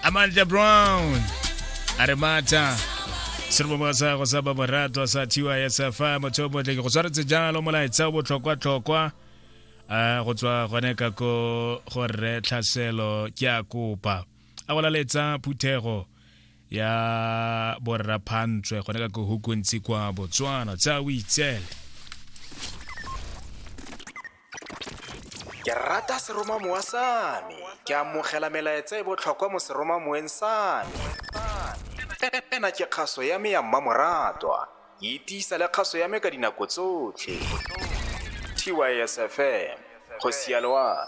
amandla brown a re matha seromongwa sa go sa ba moratwa sa thiwa ya safa motho o motle ke go tshwaretse jalo molaetsa o botlhokwa-tlhokwa a go tswa gone ka ko go rre tlhaselo ke a kopa a go laletsa phuthego ya borraphantswe gone ka ko hukontsi kwa botswana tsa o itsele Ke rata seromamowa sa me. Ke amogela melaetsa e botlhokwa mo seromamoweng sa me. Ena ke kgaso ya me ya mmamoratwa. E tiisa le kgaso ya me ka dinako tsotlhe. TYSFM, go sialoa.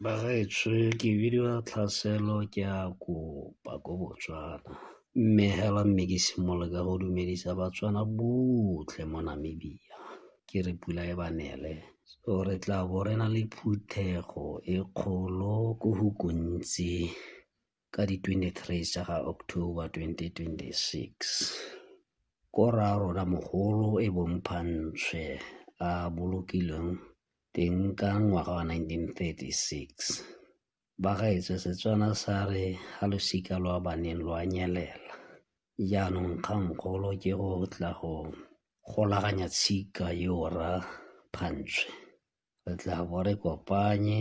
Bagaetsho ke bidiwa Tlhaselo ke a kopa ko Botswana, mme hela mme ke simolole ka go dumedisa Batswana botlhe mo Namibia ke re pula e ba nele. So re tla bo re na le phuthego e kgolo ko go gontsi. ka di 23 tsa ga October 2026. Ko rraarona mogolo e bong Phantshwe a bolokilweng teng ka ngwaga wa 1936. Bagaetsho Setswana sa re ga losika lwa baneng lwa nyelela. Jaanong kgangkgolo ke go tla go golaganya tshika yo rra Phantshwe. re tla bo re kopanye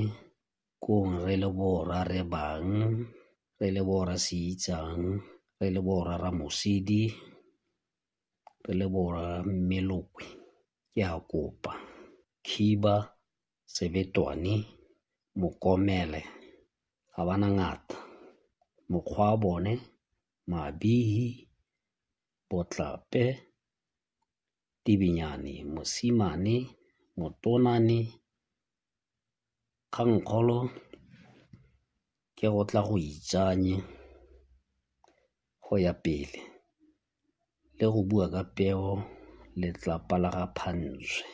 kong re le borra re bang, re le borra se itsang, re le borra Ramosidi, re le borra Mmelokwe. Ke a kopa khiba, sebetwane, mokomele ga ba na ngata. Mokgwa wa bone mabihi, botlape Tibinyane, Mosimane, Motonane, Kgangkgolo ke go tla go itsanye go ya pele le go bua ka peo letlapa la ga Phantswe.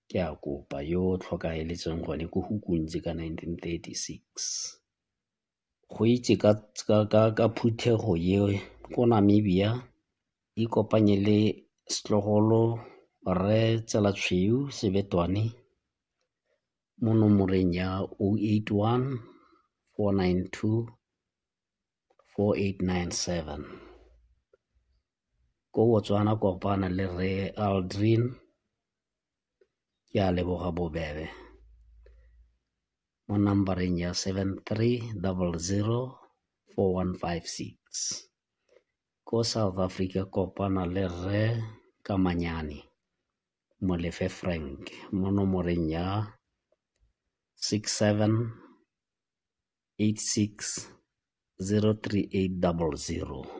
Ke a kopa yo o tlhokaeletseng gone ko Hukunzi ka 1936. go itse ka phuthego eo ko Namibia ikopanye le setlogolo Rre Tsela Tshweu Sebetwane mo nomoreng ya 0814924897. Ko Botswana kopana le Rre Aldrin. ke a leboga bobebe mo numbereng ya 73004156 ko south africa kopana le rre kamanyane molefe frank mo nomoreng ya 6786 03800